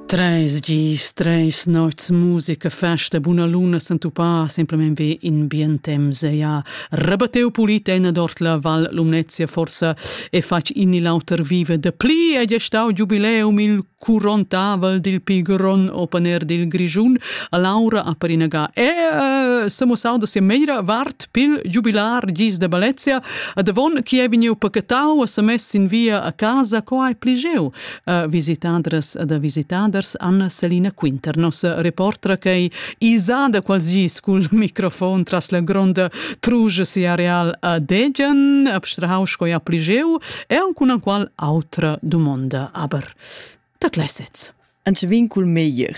Treis gis, treis nots musica, festa, buna luna s'entupà semplamein ve in bien temps ja rebatteu pulit ena dort la Val Lumnezia forsa e fatg in il auter vive de pli e gestau giubileum il curontavel dil pigron opener dil Grischun a Laura a Perinaga e eh, se mo saudo se meira vart Pil giubilar gis de Balezia, davon chi è vegniu pacatau e semess in via a casa, co hai pli jeu? Uh, visitadras da visitaders Anna Selina Quinternos, reportra che isada qualsgis cul microfon tras la gronda truge si areal a Degian, abstrahau sco ja pli jeu, e aunc una qual autra dumonda, aber da gleisets. Anche vin cul meglier.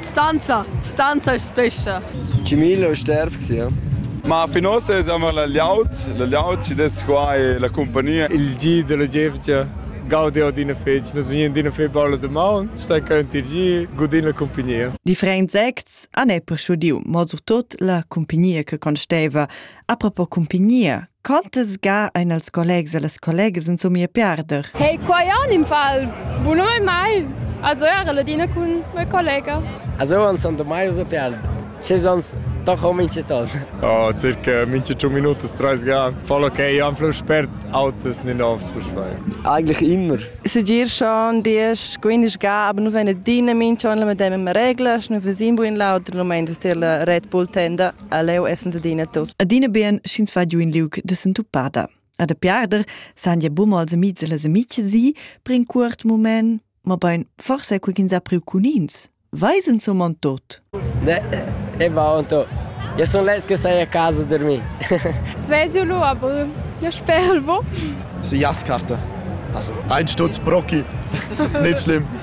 Stanza, stanza e spescha. Cimillo è sterb, sì. Ma fin ossa siamo la Liaut, la Liaut ci des qua e la compagnia. Il gi della gievgia gaudiu d'ina fetg, nus vegnin d'ina fetg balla de maun, stai cant il gi, godin la compagnia. Differents acts han è proschudiu, mo surtot la compagnia che consteva. Apropos compagnia, Quantas ga ein els collegs e las collegas insomma a perder? Hey, qua anim fal bunoi mai. Also era la dina cun mia collega. Also uns son da mai so perder. Ce sonst doch ho minche ton. Oh, circa minche 1 minuto 30 ga. Voll okay, am flu spert autos nicht aufs Fußball. Eigentlich immer. Segier schon dies, quindi ga, aber nus eine dina mincha on la medem im regla, nus vesin bu in lauter, no meins der la Red Bull tenda. leu essens adina tos. Adina bien sch'ins va giu in liug de sentupada. A de piarder san ja bumo als amics e les amici si per in cuort moment, ma bein forse cu ins ha priu cun ins. Weisen zum man tot? Ne, e va un to. Ja son lets che sai a casa dormir. Svesio lo aber. Ja sperl wo. So Jaskarte. Also ein Stutz Brocki. Nicht schlimm.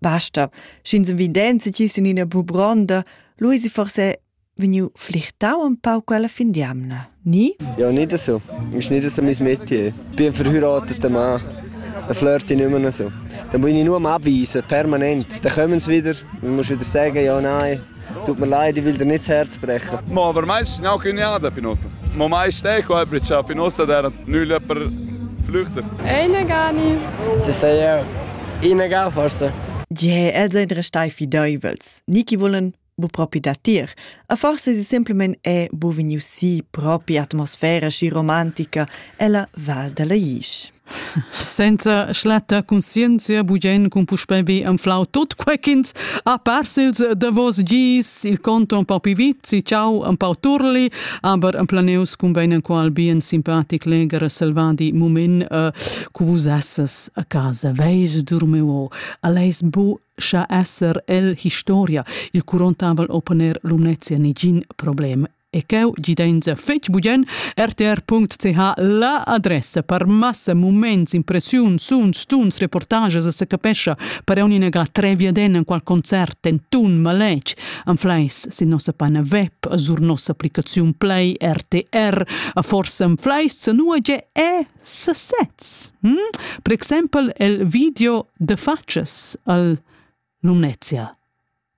Basta, sch'ins evidenzi ti sin ina bubronda, Luisi forse vegniu flichtau un pau quella fin d'jamna, ni? Ja, nicht so. Ist nicht so mein Metier. Ich bin ein verheirateter Mann. Da flirte ich nicht mehr noch so. Dann muss ich nur abweisen, permanent. Dann kommen sie wieder, dann musst du wieder sagen, ja, nein. Tut mir leid, ich will dir nicht das Herz brechen. Ma, aber meistens sind auch Cunada Finossa. Ma meist eh qua briccia Finossa, der nüll jemand flüchtet. Eine gar nicht. Sie sagen ja, ihnen gar forse. Je, els ein restai fideivels. Niki vollen bu propi da tir. A forse si semplimen è bu vegniu si propi atmosfera sci romantica ella Val della Isch. Senza schlatta conscienzia bugen cun puspei bi anflau tut quei ch'ins ha pers ils davos gis, il conto un pau pi vizi, ciao un pau turli, aber ein planeus cun bein enqual bien simpatic legher e selvadi mument uh, cu vus esses a casa, veis durmeu, aleis bu scha esser el historia il curontavel oponer lumnezia nigin problem e cheu gidenza fetg bugen rtr.ch la adressa per massa moments impressiun suns tuns reportages se capescha per un'inaga treviaden en qual concert en tun maletg anfleis sin nossa pana web sur nossa applicaziun play rtr a forse anfleis se nua ge è sesez hm? per exempel el video de faces al Lumnezia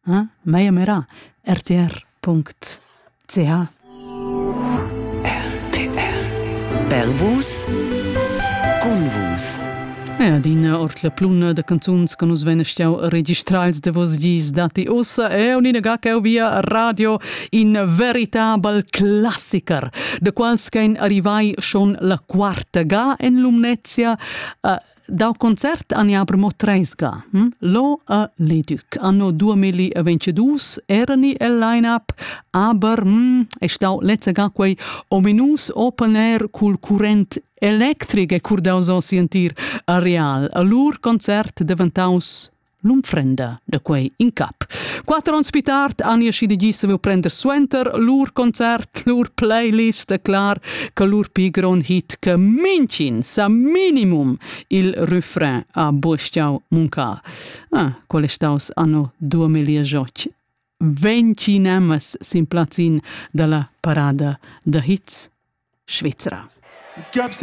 Eh? Meia merà, rtr.ch RTR Bervus Cunvus E adina ord la pluna da canzuns che nus vegn stiau registrals de vos gis dati ussa e unina ga che via radio in veritabel classiker de quals che arrivai schon la quarta ga en Lumnezia uh, Dal concert an aber mo treisga. Hm? Lo a Ledüc. Anno 2022 erani el line-up, aber hm, è stau lezzega quei ominus open air cul current electric e curdaus o sentir a real. A lur concert deventaus l'unfrenda da quei in cap. Quatter onns più tard han io schido gis saviu prender suenter lur concert, lur playlist da clar, che lur pi gron hit che mincin sa minimum il refrain a Bustiau Munca. Ah, qual è staus anno 2008? Ventinemas sin plazzin dalla parada da hits Svizzera.